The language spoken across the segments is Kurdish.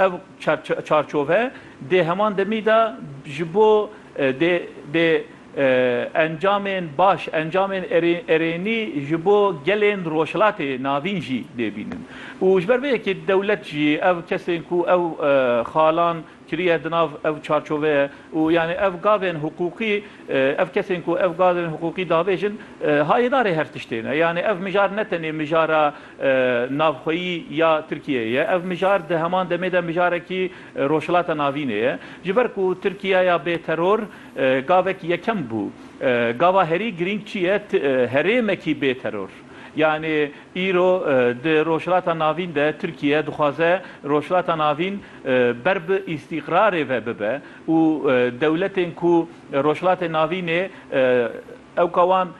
Ev çarçove dê heman demî de ji bo dê dê encamên baş, encamên erênî ji bo gelên Rojhilatê Navîn jî dê bînin. Û ji ber vê yekê dewlet jî ev kesên ku ew xalan kiriye di nav ev çarçoveye û yanî ev gavên hiqûqî, ev kesên ku ev gavên hiqûqî davêjin hayêdarê her tiştê ne. Yanî ev mijar ne tenê mijara. navxweyî ya Tirkiyeyê ye. Ev mijar di heman demê de mijarekî Rojhilata Navînê ye. Ji ber ku Tirkiye ya bê teror gavek yekem bû. Gava herî girîng çi ye? Herêmekî bê teror. Yanî îro di Rojhilata Navîn de Tirkiye dixwaze Rojhilata Navîn ber bi îstîqrarê ve bibe û dewletên ku Rojhilatê Navînê ewka wan,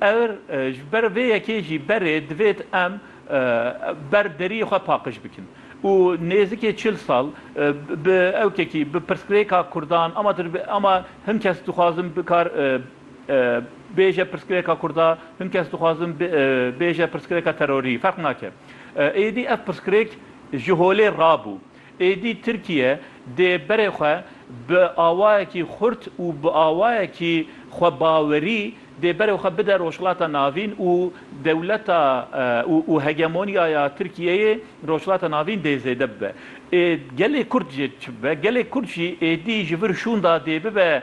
Eger ji ber vê yekê jî berê divêt em ber deriyê xwe paqij bikin û nêzikê çil sal bi ewkekî bi pirsgirêka kurdan ama tu dibê ama hin kes dixwazin bikar bêje pirsgirêka kurda hin kes dixwazin bêje pirsgirêka terorî ferq nake êdî ev pirsgirêk ji holê rabû. Êdî Tirkiye dê berê xwe bi awayekî xurt û bi awayekî xwebawerî dê berê xwe bide Rojhilata Navîn û dewleta û hegemoniyaya Tirkiyeyê li Rojhilata Navîn dê zêde bibe. Gelê Kurd jî çi bibe? Gelê Kurd jî êdî ji vir şûnda dê bibe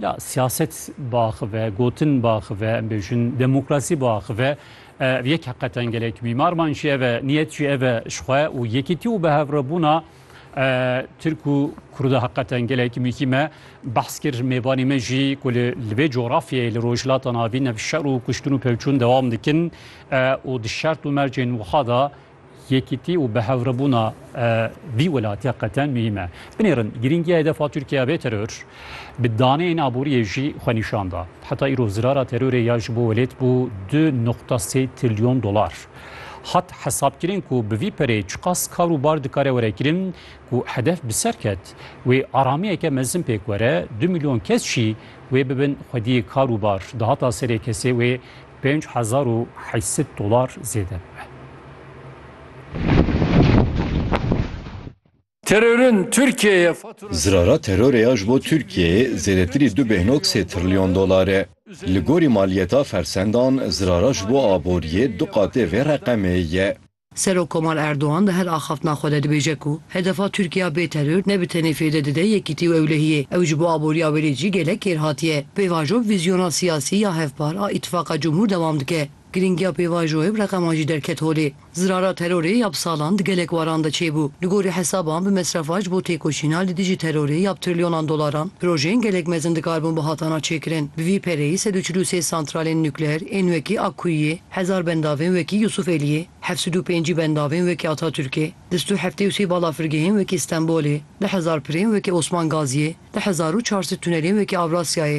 Ya siyaset biaxive, gotin biaxive, em bêjin demokrasî biaxive. Ev yek heqeten gelek mîmarman jî ev e, niyet jî ev e ji xwe û yekîtî û bihevrabûna Tirk û Kurda heqeten gelek mihîm e. Behs kir mêvanê me jî ku li li vê coğrafyayê li Rojhilata Navîn ev şer û kuştin û pevçûn dewam dikin û di şert û mercên wiha de Yekîtî û bihevrebûna vî welatiya qete muhîm e. Binêrin, girîngiya hedefa Tirkiye bê teror, bi daneyên aboriyê jî xwe nîşan da. Heta îro zirara terorê ya ji bo welêt bû du noqta sê trilyon dolar. Hat hesabkirin ku bi vî perê çiqas kar û bar dikare were kirin ku hedef bi ser ket wê aramiyeke mezin pêk were, du milyon kes jî wê bibin xwediyê kar û bar. Dahata serê kesê wê Pênc hezar û heyset dolar zêde bibe. Terorun Türkiye'ye faturası... Zirara terorê ya ji bo Tirkiyeyê zêdetirî du bêhnog sê trilyon dolar e. Li gorî maliyeta fersendan, zirara ji bo aboriyê du qatê vê reqemê ye. Serok Komal Erdogan di her axaftina xwe de dibêje ku hedefa Tirkiya bê teror ne bi tenê fêde dide yekîtî û ewlehiyê, ew ji bo aboriya welê jî gelek kêrhatî ye. Pêvajo bi vîzyona siyasî ya hevpar a Îtîfaqa Cumhur dewam dike. Girîngiya pêvajoyê bi reqeman jî derket holê. Zirara terorê ya bi salan di gelek waran de çêbû. Li gorî hesaban bi mesrefa ji bo têkoşîna li dijî terorê ya bi trilyonan dolaran, projeyên gelek mezin dikaribûn bihatana çêkirin. Bi vî pereyî sed û çil û sê santralên nukleer ên wekî Akkuyiyê, Hezar bendavên wekî Yûsûf Eliyê, heft sed û pêncî bendavên wekî Atatûrkê, di stu heftê û sê balafirgehên wekî Stenbolê, di hezar pirên wekî Osman Gaziyê, di hezar û çar sed tunelên wekî Avrasyayê,